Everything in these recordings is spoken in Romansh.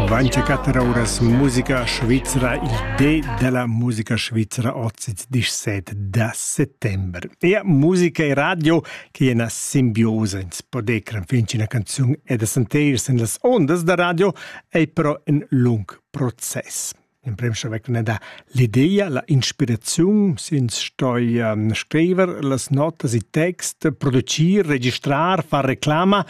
Vaincha quatter ouras musica svizra il di da la musica svizra oz disch set da settember. E musica e radio che è una simbiosa ins podecran fin una canzun e da senteirsi en las ondas da radio e però in lung proces. L'emprim savecna da l'ideia, la inspiraziun, sins stoi ehm, scriver las notas, i text, producir, registrar, far reclama,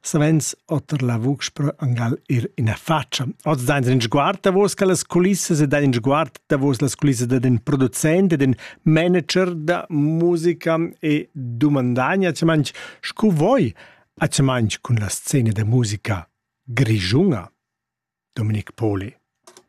savens oter la vucz per angal ir ina faccia. Oz dains in sguard davos las culissas e dain in sguard davos las culissas da den producent e den manager da musica e dumandagna, ci manch scu voi, a ci manch cun la scena da musica grischunga. Dominic Poli.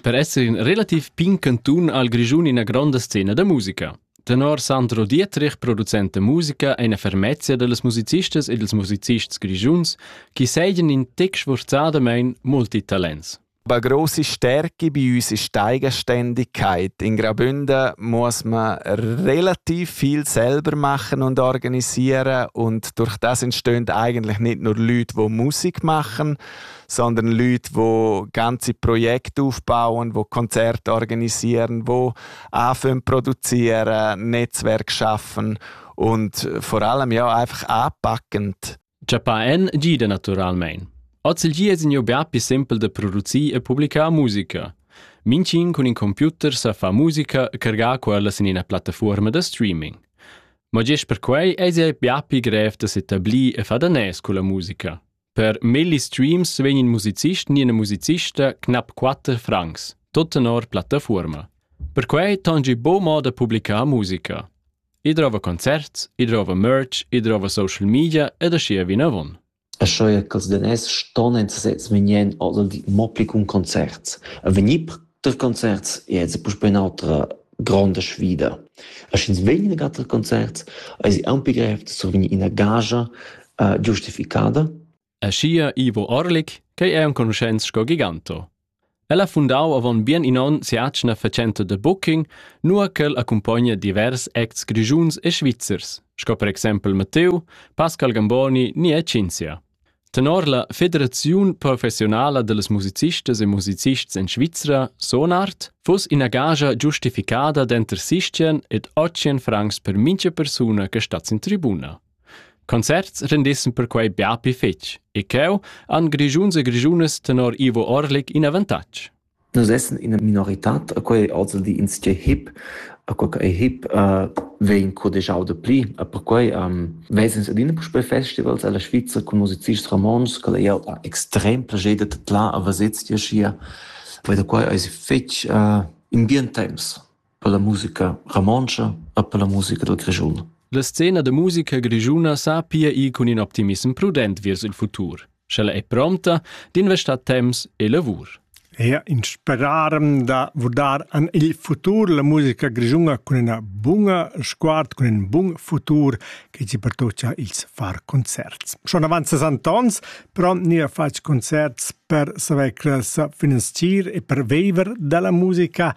Per esser in relativ pign cantun ha il Grischun ina gronda scena da musica. Tenor Sandro Dietrich, producent da musica, è eine Fermezia dals musicistas e dals musicists grischuns, che seigien in tec sforzadamain multitalents. Eine große Stärke bei uns ist die Eigenständigkeit. In Graubünden muss man relativ viel selber machen und organisieren und durch das entstehen eigentlich nicht nur Leute, die Musik machen, sondern Leute, die ganze Projekte aufbauen, die Konzerte organisieren, die anfangen produzieren, Netzwerk schaffen und vor allem ja einfach anpackend. Giappà en gida naturalmein. Oz il gia sin be più simpel da producir e publicar musica. Mincin cun in computer sa fa musica cargà quella sin ina plattaforma da streaming. Ma gest per quei eis ei più grev da s'etablir e fa da nes con la musica. Per melli streams vegn in musicist ni ina musicista knap quatter francs, tut tenor plattafuorma. Perquei tangi bo mo da publicar musica. I drova concerts, i drova merch, i drova social media ed aschia vinavon. E sche ch'els daners ston en sezs menien oder di mo pli cun concerts. A vegnir Tar concerts è ins puspè in'autra gronda sfida. Er sch'ins vegn inagà tar concerts, eisi aunc pli grev da survegnir ina gagia uh, giustificada. Aschia Ivo Orlik, che è enconuschents sco Giganto. El ha fundau avon bien in onn si'atgna fatschenta de booking, nua ch'el accumpogna divers acts grischuns e svizzers, sco per exempel Matteo, Pascal Gamboni ni e Cinzia. Tenor la Federaziun professiunala dallas musicistas e musicists en Svizra, Sonart, fuss ina gagia giustificada denter sistien ed otschien francs per mintga persuna che stat sin tribuna. Concerts rendissen perquei bia pli fetg e cheu han grischuns e grischunas tenor Ivo Orlik in avantatg. Nus essan ina minoritad e quei ei ozildi insatgei hip, e quei ch'ei hip vegn cudegiau dapli. E perquei ves'ins adina puspei festivals ella Svizra cun musicists romontschs ch'el ei jau ha extrem plascher da tadlar a veser ti aschia. Quei da quei eis fetg in bien temps. per la musica romontscha e per la musica dal Grischun. La scena da musica grischuna sa pia ir cun in optimissem prudent vers il futur, sch'ella è prompta d'investar temps e lavur. Ja, inspirarem da vurdar an il futur la musica grischuna cun ina bunga sguard, cun in bun futur che ci pertocia ils far concerts. Schon avanza Antons, però ni ha fatg concerts per saver sa finanzier e per viver dalla musica